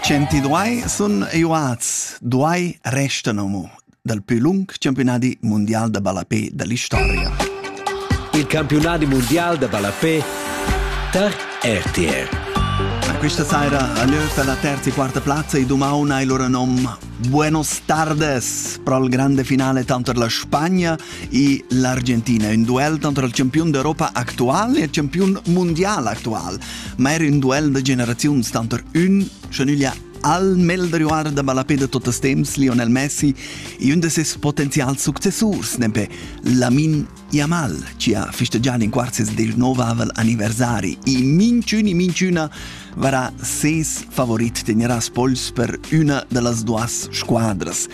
Centidue sun iuats, duai restan amo dal plü lung campiunadi mundial da ballapè da l'istoria. Il campiunadi mundial da ballapè tar RTR. Questa sera a lö per la terza e quarta plazza e domani hai loro nom Buenos Tardes pro il grande finale tanto la Spagna e l'Argentina, un duel tanto il campione d'Europa attuale e il campione mondiale attuale. ma era ün duel da generaziuns tanter ün, scha nüglia al meglder da ballapé de totes temps, Lionel Messi, e un de ses potenzials successurs, nempe Lamin Yamal, ci ha fisteggiato in quarzes del novavel anniversari e minciun e minciuna varà ses favorit teneràs pols per una de las duas squadras.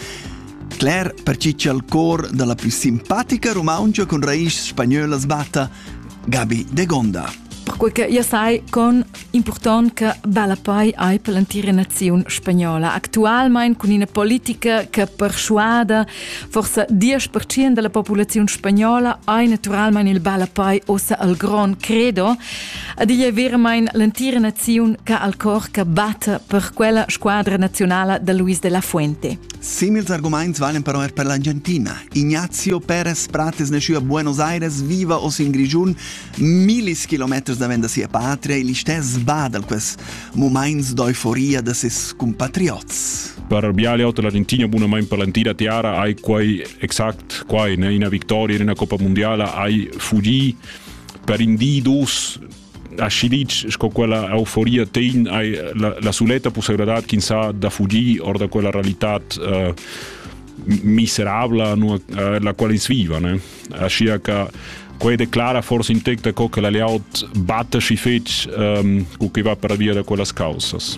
Cler per ci c'è il cor della più simpatica romancia con raiz spagnöla sbatta – Gabi Degonda. Perquei che io sai con important che bella poi hai per l'entira naziun spagnola. Actualmein con ina politica che persuada forse 10% della popolazione spagnola hai naturalmente il bella poi ossa al gron credo. Ad igl è veramente l'entira nazione che al cor che batte per quella squadra nazionale da Luis de la Fuente. Simils arguments valen però er per l'Argentina. Ignazio Perez Prates nasciu a Buenos Aires, viva oz in Grigiun, millis kilometers davent da sia patria, igl stess badal quels moments d'euforia da ses compatriots. Per biale otto l'Argentina bunamain per l'antira tiara hai quai exact quai, ne? una vittoria in una Coppa Mondiala hai fugi per in di dos aschi ditg sco quella euforia tegn hai la, la suletta possibilità ch'in sa da fugir or da quella realitat eh, miserabla nu, eh, la quale ins viva ne? Aschia che quei declara forse in tec da co che la layout batta si fetg ehm, cu che va per via da quellas causas.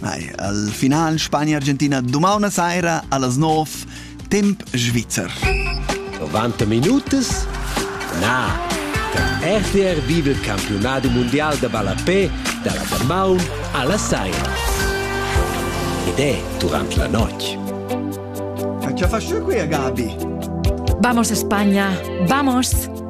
Al final Spagna-Argentina dumana saira a las 9 temp svizzer. 90 minutas? Na! Der RTR vive il campionato mondial da ballapé dalla Damaun alla saira. Ed è durante la notte. Che ha fatto qui, Gabi? Vamos a España, vamos!